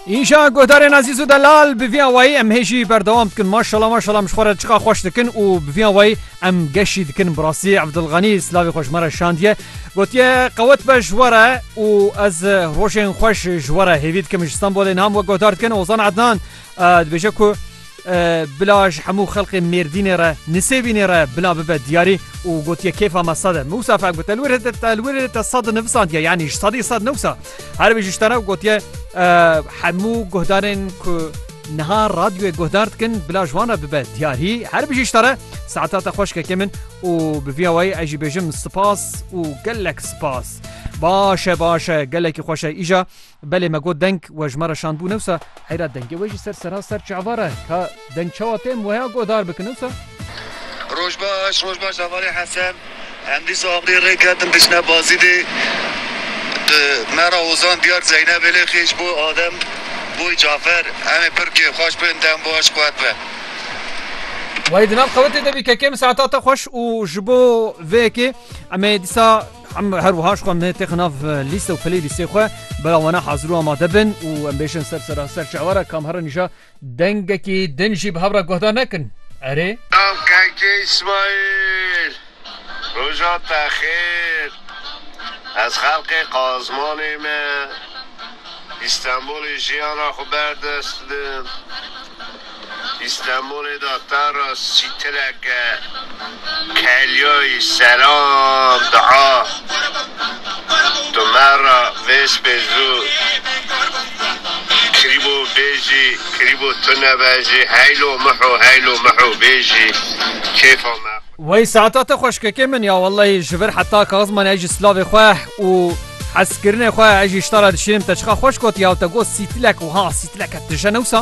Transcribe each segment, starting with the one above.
Îşa guhdarên Azîz û Delal bi vî awayî em hê jî berdewam dikin maşala maşala em ji xwe re çiqa xweş dikin û bi vî awayî em geşî dikin bi rastî Evdilxanî silavê xwe ji me re şandiye gotiye qewet be ji we re û ez rojên xweş ji we re hêvî dikim ji Stenbolê niha min we guhdar dikin Ozan Ednan Dibêje ku bila ji hemû xelqê Mêrdînê re Nisêbînê re bila bibe diyarî û gotiye kêfa me sed e. Mûsa fek bi telwirê te telwirê te sed nivisandiye yanî ji sedî sed newsa. Her wî ji ji te re gotiye hemû guhdarên ku niha radyoyê guhdar dikin bila ji wan re bibe diyarî her bijî ji te re saeta te xweşkekê min û bi vîya wayî ez jî bêjim spas û gelek spas. Baş e baş e gelekî xweş e îja Belê me got deng we ji me re şand bû newsa. Heyra dengê we jî ser serha ser çavara e. Ka deng çawa tê em weha guhdar bikin newsa. Roj baş roj baş hevalê Hesen. Em dîsa aqrê rê ketin diçine Bazidê. Di me re Ozan diyar Zeynebê lê xêş bû Adem bû Cafer. Em ê pir kêfxweş bin dem baş qwet be. Wayê di nav xewitê de bî kekê min saeta te xweş û ji bo vê yekê em ê dîsa. Em her wiha ji xwe têxin nav lîste û playlîstê xwe bera wana hazir û amade bin û em bêjin ser sera ser çawa re kam herin îja dengekî din jî bi hev re guhdar nekin. Erê. Selam kanki İsmail. Roja te xêr. Ez xelkê Qazmanê me. Îstenbolê jiyana xwe berdest didim. Îstenbûlê de pera sîtileke Kelyayî selam daa tu me ra vêspê zû krîbo bêjî krîbo tu nebejî heylo miho heylo miho bêjî kêfa me xwe. Wey saeta te xweş kekê min ya wellahî ji vir heta kaxizman ez jî silavê xwe û hezkirinê xwe ez jî ji te re dişînim te çiqa xweş gotiye ew te got sîtilek wiha sîtileke tije ne wisa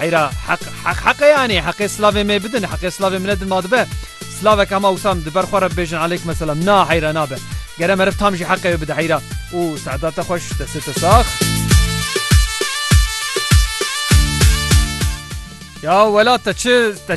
Heyra heq heq heqê yanî heqê silavê me bidin heqê silavê min nedin ma dibe silavek hema wisam di ber xwe re bibêjin aleykum selam na heyra nabe gere meriv tam jî heqê wê bide heyra û seeda te xweş destê te sax Ya wela te çi te